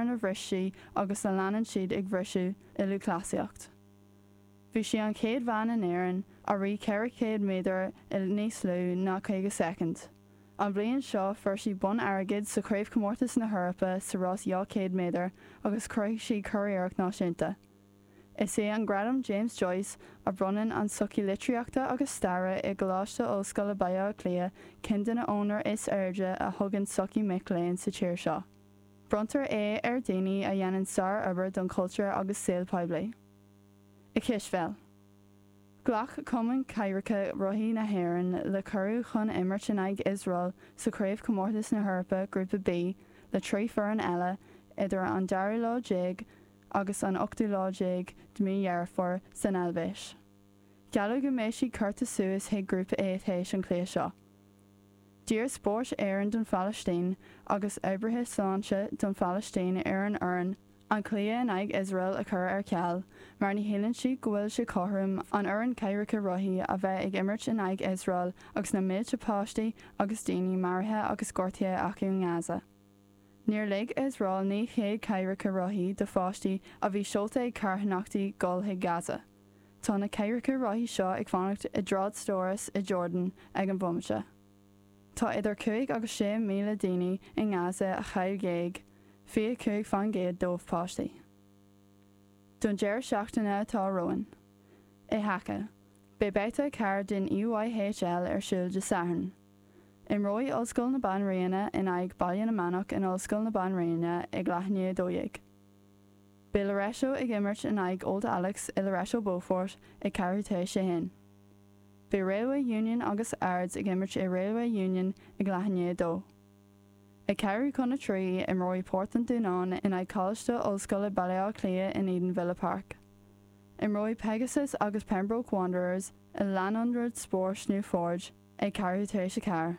a bhris sí agus a leanann siad ag briseadh i lúthchleasaíocht. Bhí sí an chéad bhean in Éirinn a rith 400 méadar i níos lú ná 50 soicind. An bhliain seo fuair sí bonn airgid sa Chraobhchomórtas na hEorpa sa rás 200 méadar agus chruthaigh sí curiarracht náisiúnta. Is é an Gradam James Joyce a bhronnann an tSochaí Litríochta agus Staire i gColáiste Ollscoile Baile Átha Cliath ceann de na onóracha is airde a thugann sochaí mic léinn sa tír seo. Bronntar é ar dhaoine a dhéanann sárobair don chultúr agus saol poiblí. I gcispheil, ghlac Cumann Cathaoireacha Rothaí na hÉireann le cuireadh chun imirt in aghaidh Iosrael sa Chraobhchomórtas na hEorpa, Grúpa B, le trí foireann eile idir an dara lá déag agus an ochtú lá déag de mí Dheireadh Fómhair san Eilvéis. Gealladh go mbeidh siad curtha suas chuig Grúpa A tar éis an chluiche seo. D'iarr Spórt Éireann don Phalaistín agus oibrithe sláinte don Phalaistín ar an fhoireann an cluiche in aghaidh Iosrael a chur ar ceal mar ní shíleann siad go bhfuil sé cothrom an fhoireann cathaoireacha rothaí a bheith ag imirt in aghaidh Iosrael agus na mílte páistí agus daoine maraithe agus gortaithe acu i nGaza. Níor lig Iosrael 900 cathaoireacha rothaí do pháistí a bhí seolta ag carthanachtaí dul chuig Gaza. Tá na cathaoireacha rothaí seo ag fanacht i dtrádstóras i Jordan ag an bhomaite. Tá idir cúig agus sé míle daoine i nGaza a chaill géag fiche cúig faoin gcéad dóibh páistí. Don deireadh seachtaine atá romhainn i haca, beidh babhta 4 den EYHL ar siúl de Sathairn. Imreoidh Ollscoil na Banríona in aghaidh Baile na Manach in Ollscoil na Banríona ag leath i ndiaidh a dó dhéag. Beidh Loreto ag imirt in aghaidh Old Alex i Loreto Beaufort ag ceathrú tar éis a haon. Beidh Railway Union agus Ards ag imirt i Railway Union ag leath i ndiaidh a dó. Ag ceathrú chun a trí, imreoidh Port an Dúnáin in aghaidh Coláiste Ollscoile Baile Átha Cliath in Edenvilla Park. Imreoidh Pegasus agus Pembroke Wanderers i Lárionad Spóirt Newforge ag ceathrú tar éis a ceathair.